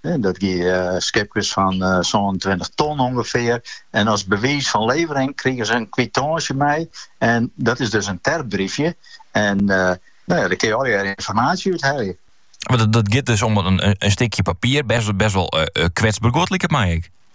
Dat gie om skipkes fan sa'n tweintich ton ûngefear. En as bewiis fan levering krige se in kwitantsje mei. En dat is dus in terpbriefke. En uh, no ja, dêr kin je al je ynformaasje úthelje. Mar dat, dat giet dus om in, in stikje papier, best, best wol uh, kwetsber guod, liket my ek.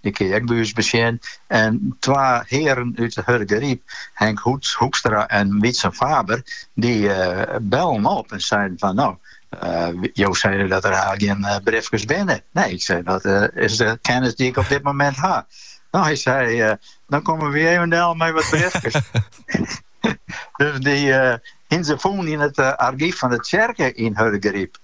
Dy kin je ek by ús besjen. En twa hearen út Hurdegaryp, Henk Hoekstra en Wietse Faber, dy bellen op en seinen fan no, jo seinen dat der hast gjin briefkes binne. Nee, ik sei, dat is de kennis dy't ik op dit momint ha. No, hy sei, dan komme wy even del mei wat briefkes. Dus dy hienen se fûn yn it argyf fan de tsjerke yn Hurdegaryp.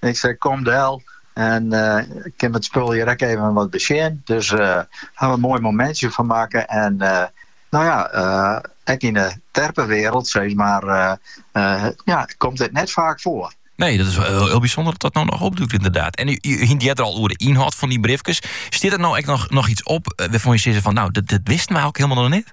Ik sei, kom del en kin we it spul hjir ek even wat besjen. Dus ha we der in moai momintsje fan makke en no ja, ek yn 'e terpewrâld sis mar, ja, komt dit net faak foar. Nee, dat is wol hiel bysûnder dat dat no noch opdûkt yndied. En jo hienen it der al oer, de ynhâld fan dy briefkes. Stiet der no ek noch, noch iets op eh, wêrfan't jo sizze fan no, dat, dat wisten we ek hielendal noch net?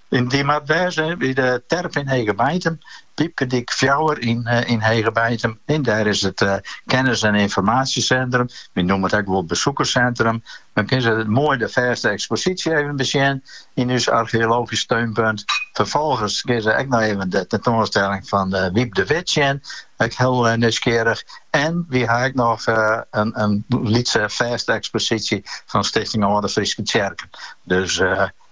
Dy moat wêze by de terp yn Hegebeitum, Pypkedyk fjouwer yn Hegebeitum. Dêr is it kennis- en ynformaasjesintrum, wy noemen it ek wol besikerssintrum. Dan kinne se moai de fêste eksposysje even besjen yn ús argeologysk steunpunt. Ferfolgens kinne se ek noch even de tentoanstelling fan Wyb de Wit sjen, ek hiel nijsgjirrich. En wy ha ek noch in lytse fêste eksposysje fan Stichting Alde Fryske Tsjerken.